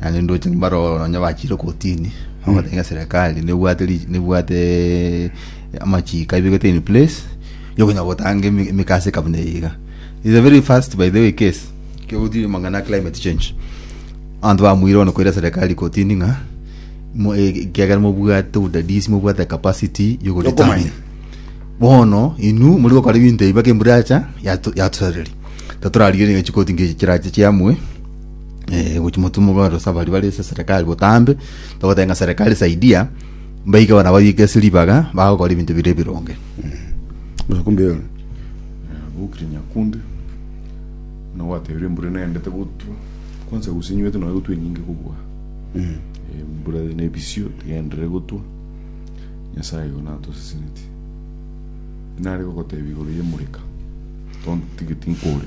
Naende ndoche mbaroro nonya bachiire kotini bagoteba ng'a serikali nebwate ri- nebwate amachiiko aibegete in place yokonya gotanga emi- emegasi eka buna eye iga is a very fast by the way case ekero ogotiiri amang'ana ya climate change abanto bamoire bono koira serikali kotini ng'a mo- e- ekiagera mobwate obodadisi mobwate ecapacity Yokomanya. bono inwe moria gokora ebinto ebi mpaka embura yacha yato- yatosareria tatorarigereria ng'a chikoti nkechi chirache chiamue. eh, gochi motumo kwa rosa bari bari ase serikali botambe togotenga serikali saidia mbaike bana babike ase ribaga bagokora ebinto bire bironge Nakumbe yona. bukire nyakundi na gwatebire mbura nendete gotwa kwanza gusinywete nawe gotwa enyinge kobua Eh, mbura ne bisio tigendere gotwa nyasaye igo natoseseneti nare gogotebia igoro ye mureka tontigeti nkore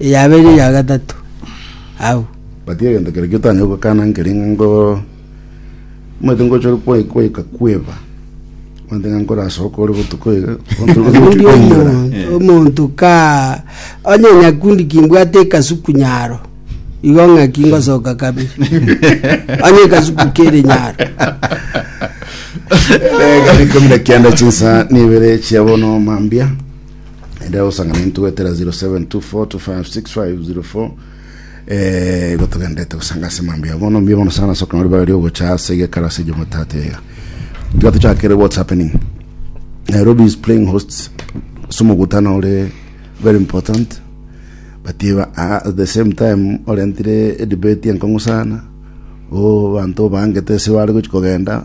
Eyabere ya gatato agwo. But egento keria giotaanya gokana nkeri ng'a ngo omanyete ngocha ore kwa- kwaika kweba omanyete ng'a nkorasoka ore botuko iga Obundi omonto omonto ka onye nyakundi kimbwate ekasuku nyaro igo ng'aki ngosoka kabere onye ekasuku kere nyaro Rikumi na kianda chinsa nibere chia bono mambia ende agosangana intwe gwetera 0724256504 eh, igo togendete gosanga ase mambi abo bono mbia bono sana soka nori bagari ogocha ase egekaro ase jomotate ega tiga tochakere what's happening nairobi is playing hosts somogutano ore very important but iba- at the same time orentire edebate enkong'u sana o banto bangete ase bare gochi kogenda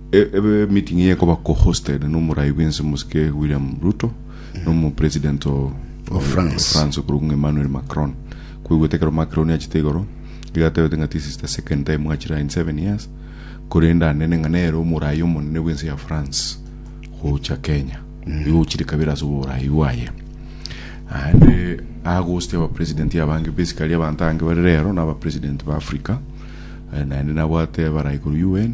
E- Ebe meeting eye ekoba co-hosted nomoraai bwense omosike William Ruto nomo president o Of France. France okorwa ng'a Emmanuel Macron. Kweguete ekero Macron achete igoro iga atebete ng'a this is the second time gachira in seven years korende anene ng'a nere omoraai omonene bwense ya France gocha Kenya. Igo ochire kabere ase oboraai bwaye. Aende agostia aba president abange basically abanto abange bare rero na aba president ba Africa eh, naende nabwate abarai korwa UN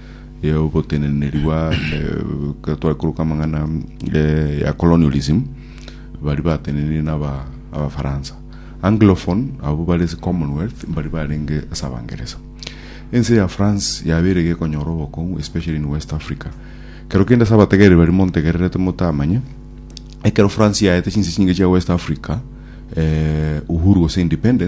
y'ogoteneneriwa ekero twaikoroka amang'ana ya colonialism bari batenenire na abafaransa anglophone abo bare ase commonwealth bari barenge ase abangeresa ense ya france yabeire iga ekonyora obokong'u especially in west africa ekero kende ase abategereri baria montegererete motamanye ekero france yaete chinse chinge chia west africa uhuru gose independence.